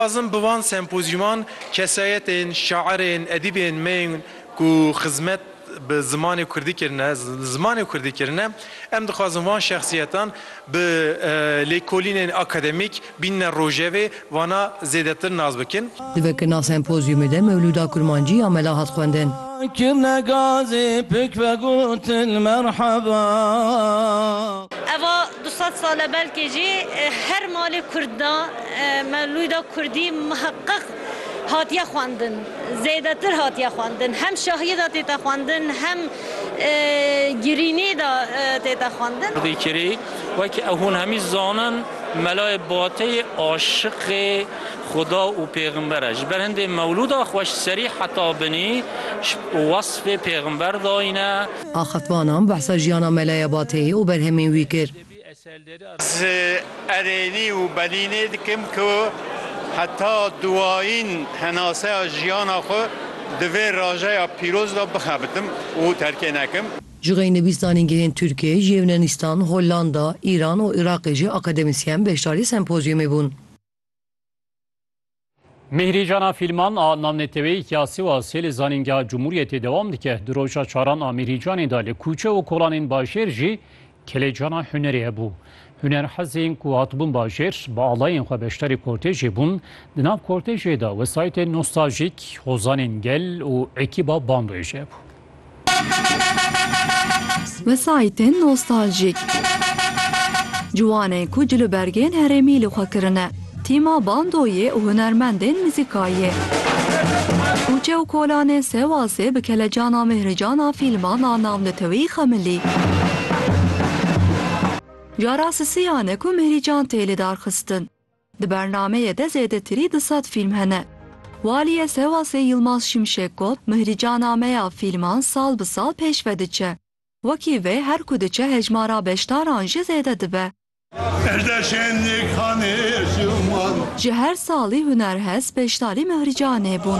Dixwazim bi van sempozyûman kesayetên, şairên, edîbên me yên ku xizmet bi zimanê kurdî kirine, zimanê kurdî kirine, em dixwazin van şexsiyetan bi lêkolînên akademîk bînine rojevê, vana zêdetir nas bikin. Di vekirina sempozyûmê de Mewlûda Kurmancî ya mela hat xwendin. Kirine gazê pik vegotin merheba. Eva Du sed sal e belkê jî her malê kurd de mewlûda kurdî miheqeq hatiye xwendin, zêdetir hatiye xwendin. Hem şahiyê de tête xwendin hem girînê de tête xwendin. Kurdî kirî wekî ew hûn hemî zanin melayê bateyê aşiqê xuda û pêximber e. Ji ber hindê mewlûda xweş serî heta binî wasfê pêximber dayîne. Axaftvanan behsa jiyana Melaya Bateyê û berhemên wî kir. Ez erênî û belînê dikim ku heta duwayîn henaseya jiyana xwe di vê rajeya pîroz de bixebitim û terkê nekim. Jixeynivîs Zanîngehên Tirkiyê, Yewnenistan, Hollanda, Îran û Iraqê jî akademisyen beşdarî sempozyumê bûn. Mîhrîjana fîlman a navneteweyî ya Sîwasê li Zanîngeha Cumhuriyetê dewam dike. Di roja çaran a Mîhrîjanê de li kûçe û kolanên bajêr jî kelejana hunerê hebû. Hunerhezên ku hatibûn bajêr bi alayên xwe beşdarî kortejê bûn. Di nav kortejê de wesayîtên nostaljîk, hozanên gel û ekîba bandojê hebû. Wesayîtên nostaljîk. Ciwanên ku cil û bergên herêmî li xwe kirine, tîma bandoyê û hunermendên mizîkayê. Kûçe û kolanên Sewasê bi kelecana Mihrijana fîlma na nav li tewî Xemilî. Jara sisiyan e ku Mihrican tê lidarxistin. Di bernameyê de zêdetirî du sed fîlm hene. Waliyê Sewasê Yilmaz Şimşek got, Mihricana me ya fîlman sal bi sal pêş ve diçe. Wekî vê her ku diçe hejmara beşdaran jî zêde dibe. Ji her salî hunerhez beşdarî Mihricanê bûn.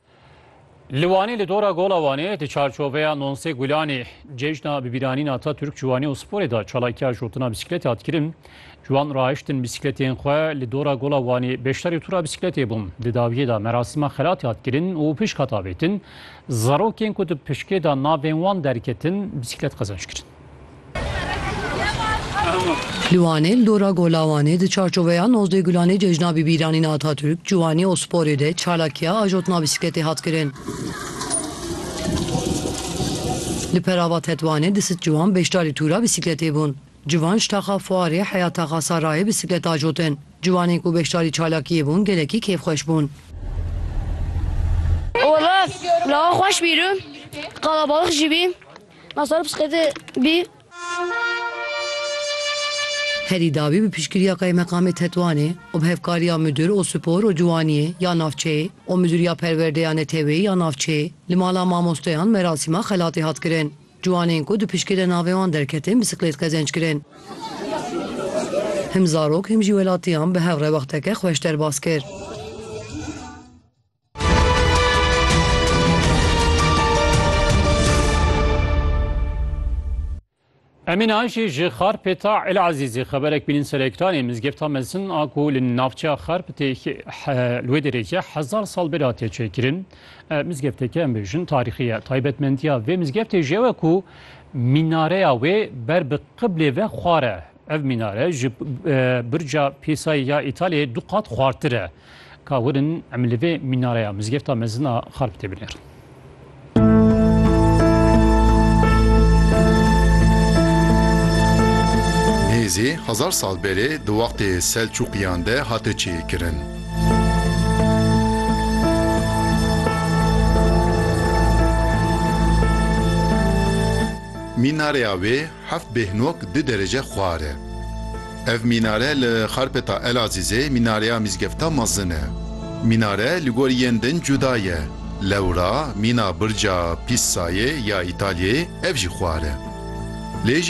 Li Wanê li dora Gola Wanê di çarçoveya Nonsê Gulanê cejna bibîranîna Atatürk ji Wanê û sporê de çalakiya jotina bîsîkletê hat kirin. Ciwan rahiştin bîsîkletên xwe li dora Gola Wanê beşdarî tûra bîsîkletê bûn. Di dawiyê de merasîma xelatê hat kirin û pişk hat avêtin. Zarokên ku di pişkê de navên wan derketin bîsîklet qezenç kirin. Li Wanê li dora Gola Wanê di çarçoveya nozdeh gulanê Cejna Bibîranîna Atatürk, Ciwanî û Sporê de çalakiya ajotna bîsikletê hat kirin. Li Perava Tetwanê di sid ciwan beşdarî tûra bîsikletê bûn. Civan ji taxa Fuarê heya taxa Sarayê bîsiklet ajotin. Ciwanên ku beşdarî çalakiyê bûn gelekî kêfxweş bûn. Wele lava xweş bî rû, qalabalix jî bî. Nasara bisiklete bî. Herî dawî bi piştgiriya Kaymekamê Tetwanê û bi hevkariya Mudir û Spor û Ciwaniyê ya navçeyê û Mudiriya Perwerde ya Neteweyî ya navçeyê li mala mamosteyan merasîma xelatê hat kirin. Ciwanên ku di piştgê de navê wan derketin bisiklêt qezenc kirin. Him zarok him jî welatiyan bi hev re wexteke xweş derbas kir. Emîn Ayşî ji Xarpê ta Elazîzê xeberek bînin serektanê mizgefta mezin a ku li navçeya Xarp tê li wê derê ye hezar sal bêra tê çêkirin. Mizgefteke em bêjin tarîxî ye. Taybetmendiya vê mizgeftê ji ew e ku mînareya wê ber bi qiblê ve xwar e. Ev mînare ji birca Pîsayê ya Îtalyayê du qat xwartir e. Ka werin em li vê mînareya Mizgefta Mezin a Xarp tê binêrin. Nêzî hezar sal berê di wextê Selçûqiyan de hate çêkirin. Mînareya wê Heft bêhnok du derece xwar e. Ev mînare li Xarpeta Elazîzê mînareya mîzgefta mezin e. Mînare li gor yên din cuda ye. Lewra mîna birca Pîssayê ya Îtalyayê ev jî xwar e. Lê ji